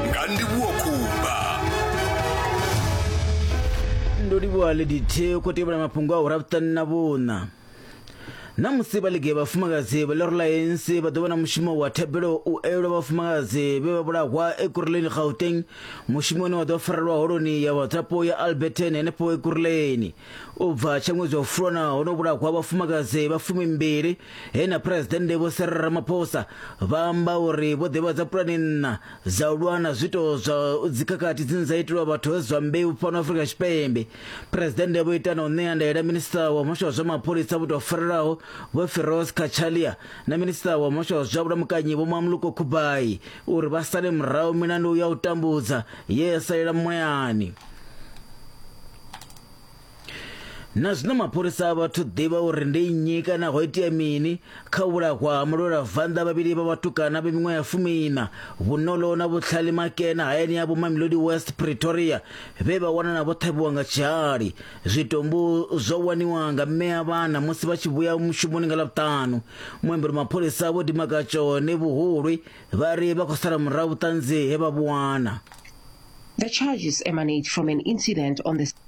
nga ndivhuwo khumba ndo livhuwa lady t khou tevhela mafhungo a ura vhuṱanu na vhuṋa na musi vha ligi ya vhafumakadzi vha lereliance vha ḓo vha na mushumo wa thabelo u elwa vhafumakadzi vhe vha vhulahwa ekuruleni gauteng mushumo une wa ḓo farelwa holoni ya vhadzulapo ya alberton henefho ekuruleni u bva tsha ṅwedzi wa fulwana ho no vhulahwa vhafumakadzi vha fumimbili he na phuresidennde vho Cyril Ramaphosa vha amba uri vho ḓivhadza pulani nna dza u lwa na zwiito zwa dzikhakhathi dzine dza itelwa vhathu vha zwa mbeu fhano Afrika Tshipembe phuresidennde vho ita na u ṋea ndaela minista wa muhasho wa zwa mapholisa vho tou farelaho vho Firoz Kachalia na minista wa muhasho wa zwa vhulamukanyi vho Mamluko Kubai uri vha sale murahu milandu ya u tambudza ye ya salela mulayani na zwino mapholisa a vhathu ḓivha uri ndi nnyi kana ho itea mini kha u vhulahwa ha mulwelavhanḓa vhavhili vha vhatukana vha miṅwaha ya fumiina vhuṋolo na vhutlhali makena hayani ya vhomamilodi west pretoria vhe vha wanana vho ṱhavhiwa nga tshihali zwitumbu zwo waniwa nga mme a vhana musi vha tshi vhuya mushumoni nga ḽavhuṱanu muambeli mapholisa vho dimakatsho ne vhuhulwi vha ri vha khou sala murahu vhuṱanzi he vha vhu wana The charges emanate from an incident on the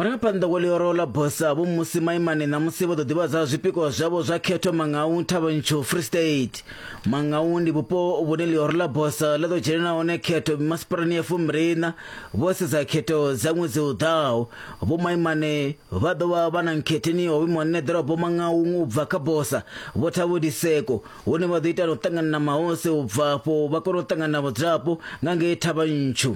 murangaphanḓa wa ḽioro ḽa bosa vho musi maimane ṋamusi vho ḓo ḓivhadza zwipikwa zwavho zwa khetho mangau thavhantsho free state mangau ndi vhupo vhune ḽioro ḽa bosa ḽa ḓo dzhenela hone khetho mimasipalani ya fumbiliṋa vho sedza khetho dza ṅwedzi u ḓaho vhomaimane vha ḓo vha vha na nkhetheni ho vhimwa nṋe ḓorobo maṅauṅu u bva kha bosa vho thavhodiseko hune vha ḓo ita na u ṱangana na mahose u bva afho vha kona u ṱangana na vhadzulapo nga ngei thavha ntshu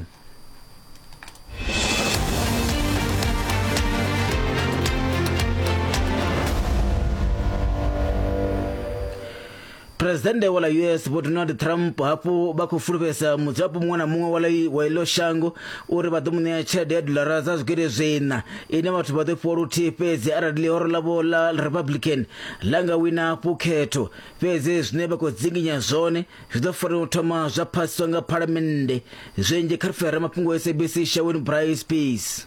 phuresidennde wa ḽa us vho donald trump hafhu vha khou fulufhedzisa mudzulapo muṅwe na muṅwe wa ḽi wa iḽo shango uri vha ḓo mu ṋea tshelede ya dolara dza zwigidi zwiṋa ine vhathu vha ḓo fhiwa luthihi fhedzi arali ḽihoro ḽavho ḽa republican ḽa nga wina hafhu khetho fhedzi zwine vha khou dzinginya zwone zwi ḓo fanela u thoma zwa phasiswa nga phalamennde zwinzhi kha rifera mafhungo sabc shaweni bryce peace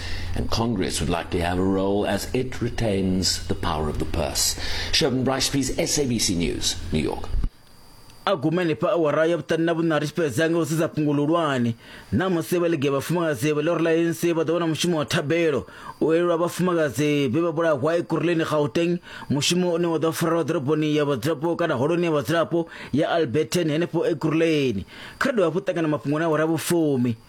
And Congress would like to have a role as it retains the power of the purse. Sherman Bryce, please, SABC News, New York. a gumele pa awara ya vhuṱani na vhuṋari tshi fhedza nga u sedza fhungo luhulwane na musi vha lege vhafumakadzi vha ḽori ḽa anc vha ḓo vha na mushumo wa thabelo u elelwa vhafumakadzi vhe vha vhulahwa ekuruleni gauteng mushumo une wa ḓo farelwa ḓoroboni ya vhadzulapo kana holoni ya vhadzulapo ya alberton henefho ekuruleni kha ri dovha hafhu ṱangana mafhungo na awara vhufumi